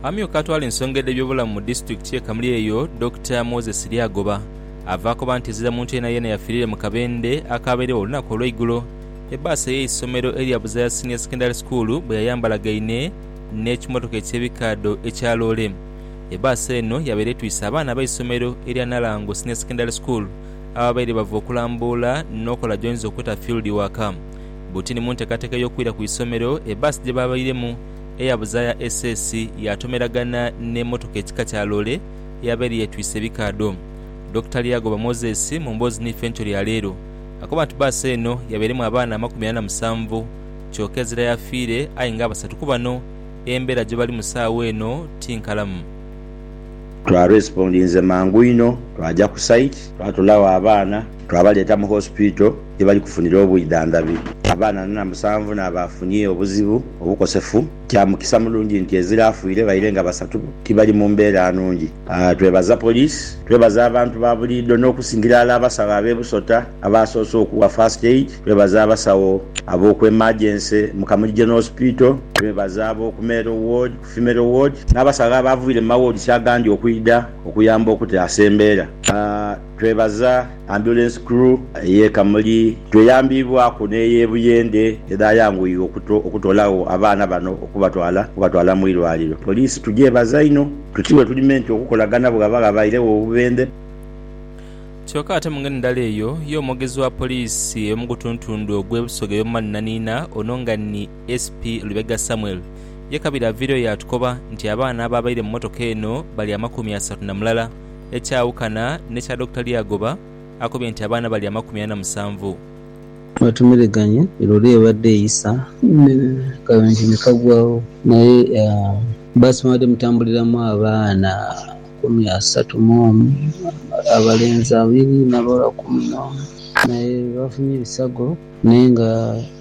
Amyuka atwala ensonga edh'ebyobulamu mu disitulikiti ye Kamuli eyo, Dokita Moses Lyagoba ava akoba nti ezira muntu yeenayeena yafiirire mu kabendhe akaabairegho olunaku olweigulo ebbaasi ey'eisomero erya Buzaya Senior Secondary School bwe yayambalagaine n'ekimotoka eky'ebikaadho ekya loole. Ebbaasi eno yabaire etwise abaana b'eisomero erya Nalango Senior Secondary School ababaire bava okulambuula n'okola gyoinza okweta field work. Buti ni mu nteekateeka ey'okwira ku isomero, ebbaasi gye baabairemu eya buzaaya SS yaatomeragana n'emmotoka ekika kya loole eyabaire yetwise ebikaadho. Dokita Lyagoba Moses mu mboozi n'ife enkyo lya leero, akoba nti bbaasi eno yabairemu abaana amakumi ana na musanvu kyoka ezira yafiire aye nga abasatu ku bano embeera gye balimu saagho eno ti nkalamu. Twa respondinze mangu inho, twaja ku site, twatulagho abaana twabaleeta mu hospital ye bali kufunira obwidhandhabi. Abaana ana musanvu n'abaafunye obuzibu obukosefu. Kya mukisa mulungi nti ezira afwire baire nga basatu tibali mu mbeera nungi. Twebaza Police, twebaza abantu ba buliidho n'okusingira ghala abasawo ab'e Busota abaasoose okuwa First Aid, twebaza abasawo ab'oku Emergency mu Kamuli General Hospital, twebaza ab'oku Meero Ward, Female Ward, n'abasaagha abaavwire mu mawoodi kyagandhi okwidha okuyamba okutaasa embeera. Twebaza Ambulance Crew ey'e Kamuli, tweyambiibwaku n'ey'e Buyende edhaayanguyiirwa okutoolagho abaana bano okubatwala okubatwala mu irwaliro. Poliisi tugyebaza inho. Tuti wetuli me nti okukolagana bwaba ghabairegho obubendhe. Kyoka ate mu ngeri ndala eyo ye omwogezi wa poliisi ey'omu gutuntundu ogw'e Busoga ey'obumanhinaninha ono nga ni SP Lubega Samuel ye kabiri aviireyo yaatukoba nti abaana abaabaire mu mmotoka eno bali amakumi asatu na mulala ekyawukana n'ekya Dokita Lyagoba akobye nti abaana bali amakumi ana musanvu. Batumiriganye lole ebadde eyisa ne Kayonjo ne Kagwawo naye bbaasi mwe mubadde mutambuliramu abaana amakumi asatu mu omu, abalenzi babiri n'abaghala kumi n'omu naye baafunye ebisago naye nga.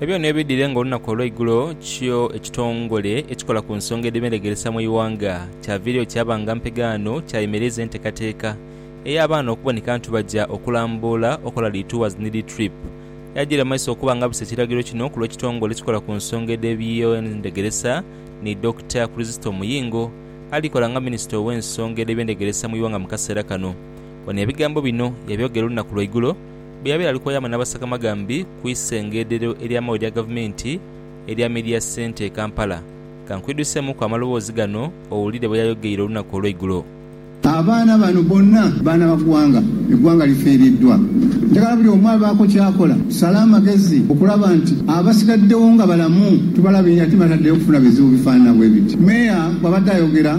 Ebyo ni ebidhire nga olunaku olweigulo kyo ekitongole ekikola ku nsonga edhimeregeresa mu ighanga kyaviireyo kyaba nga mpegaano kyayemereiza entekateka eya baana okuboneka nti baja okulambuula okola dhi tours ni dhi trip eyajira mu maiso okuba nga abisa ekiragiro kino ku lwekitongole ekikola ku nsonga edhe byendhegeresa ni Dokita Christo Muyingo ali kola nga minisita owensonga edhe byendhegeresa mu ighanga mu kaseera kano ono ebigambo bino yabyogera olunaku lweigulo bwe yabaire ali kwoyamu n'Abasagamagambi ku isengeedhero ery'amawulire ya Gavumenti erya Media Centre e Kampala. Ka nkwidhuseemuku amaloboozi gano owulire bwe yayogeire olunaku olw'eigulo. Abaana bano bona baana ba kuwanga, egwanga lifiiriddwa. Njagala buli omu abaako kyakola tusale amagezi okulaba nti abasigaddewo nga balamu tubalabirira ate bataddeyo kufuna bizibu bifaanana bwebiti, Meeya bwabadde ayogera.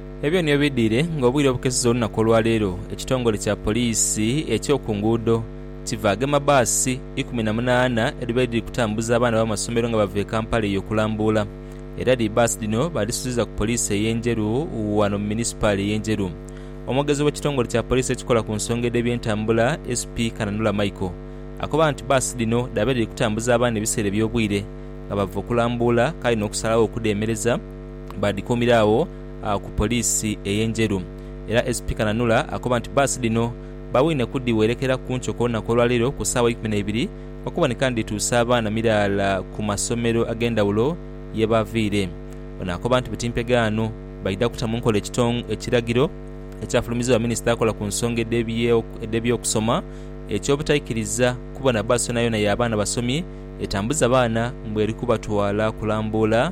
Ebyo nio bidhire nga obwire obukeseza olunaku olwa leero ekitongole kya poliisi eky'oku nguudo kivaagema baasi ikumi na munaana edhibaire dhiri kutambuza abaana b'amasomero nga bava e Kampala eyo okulambuula era dhi baasi dhino baadhisuziza ku poliisi ey'e Njeru wano mu munisipaali ey'e Njeru. Omwogezi w'ekitongole kya poliisi ekikola ku nsonga edh'ebyentambula, SP Kananula Michael akoba nti baasi dhino dhabaire dhiri kutambuza abaana ebiseera eby'obwire nga bava okulambuula kale n'okusalagho okudheemereza baadhikuumira agho ku poliisi ey'e Njeru. Era SP Kananula akoba nti bbaasi dhino baawine kudhiwerekera ku nkyo kw'olunaku olwaleero ku ssaawa eikumi n'eibiri okuboneka nti dhituuse abaana miraala ku masomero ag'endhawulo ye baaviire. Ono akoba nti buti mpegaano baidha kuta mu nkola ekiragiro ekyafulumizibwa minisita akola ku nsonga edh'ebyokusoma eky'obutaikiriza kubona bbaasi yoonayoona y'abaana basomi etambuza baana mbu eri kubatwala kulambuula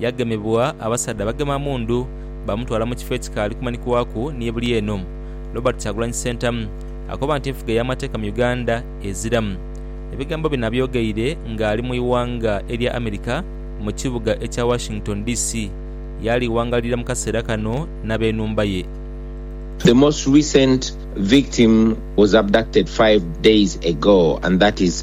yagemebwa abasaadha abagema mundu bamutwala mu kifo ekikaali kumanhikibwaku ni Bulyeeno. Robert Kyagulanyi Ssentamu akoba nti enfuga ey'amateeka mu Uganda eziramu. Ebigambo bino abyogeire ng'ali mu ighanga erya America mu kibuga ekya Washington DC yaali ghangalira mu kaseera kano n'abenhumba ye. The most recent victim was abducted five days ago and that is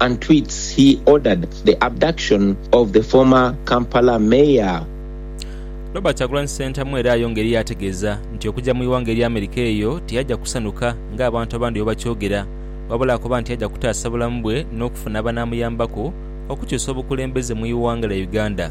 and tweets he ordered the abduction of the former Kampala Mayor. Robert Kyagulanyi Ssentamu era ayongeire yaategeeza nti okugya mu ighanga erya America eyo tiyaja kusanhuka nga abantu abandi bwebakyogera wabula akoba nti aja kutaasa bulamu bwe n'okufuna abanaamuyambaku okukyusa obukulembeze mu ighanga lya Uganda.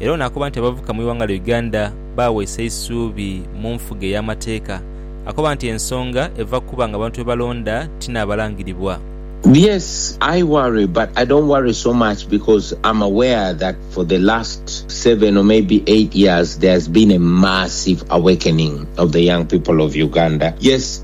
Era ono akoba nti abavubuka mu ighanga lya Uganda baaweisa eisuubi mu nfuga ey'amateeka. Akoba nti ensonga eva ku kuba nga abantu be balonda ti n'abalangiribwa. Yes I worry but I don't worry so much because am aware that for the last seven or maybe eight years there has been a massive awakening of the young people of Uganda yes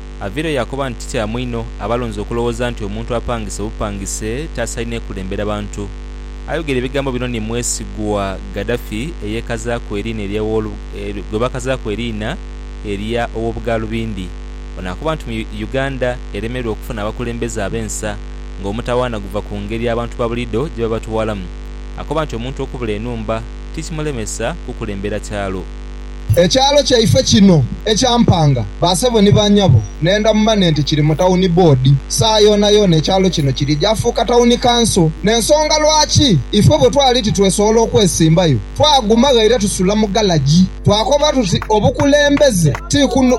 Avilo yaakoba nti kikyamu inho abalonzi okulowooza nti omuntu apangisa obupangise taasaine kulembera bantu. Ayogera ebigambo bino ni mwesigwa Gaddafi eyeekazaaku eriina erya gwe baakazaaku eriina erya Ow'obugaalubindi. Ono akoba nti mu Uganda eremerwe okufuna abakulembeze ab'ensa ng'omutawaana guva ku ngeri abantu ba buliidho gye babatwalamu. Akoba nti omuntu okubula enhumba ti kimulemesa kukulembera kyalo. Ekyalo kyaife kino ekya Mpanga, ba sebo ni ba nyabo, nenda mumane nti kiri mu Tawuni Boodi. Saagha yoonayoona ekyalo kino kiri gyafuuka Tawuni Kanso. N'ensonga lwaki ife bwe twali titwesobola okwesimbayo, twaguma ghaire tusula mu galagi. Twakoba tuti obukulembeze ti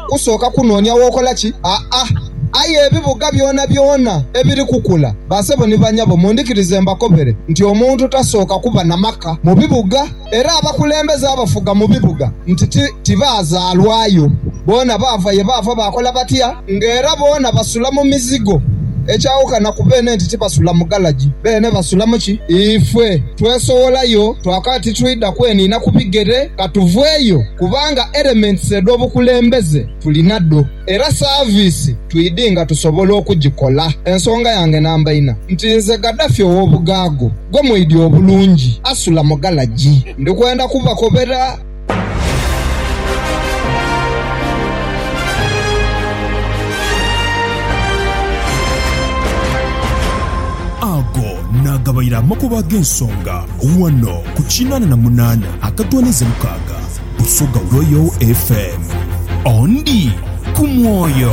kusooka kunoonia w'okola ki, aa, aye ebibuga byonabyona ebiri kukula. Ba sebo ni ba nyabo, mundhikirize mbakobere nti omuntu tasooka kuba na maka mu bibuga. Era abakulembeze abafuga mu bibuga nti tibaazaalwayo, boona baava ye baava baakola batya? Nga era boona basula mu mizigo. Ekyawukana ku beene nti tibasula mu galagi, beene basula mu ki? Ife twesowolayo twaka titwidha kweniina ku bigere, ka tuveeyo, kubanga elements edh'obukulembeze tuli nadho, era saaviisi twidhi nga tusobola okugikola. Ensonga yange namba ina nti nze Gaddafi ow'obugaago. Gwe mwidhi obulungi asula mu galagi, ndi kwenda kubakobera. Ago naagabaire amakubo ag'ensonga ghano ku kinaana na munaana akatwanize mukaaga Busoga Royal FM. Ondi ku mwoyo.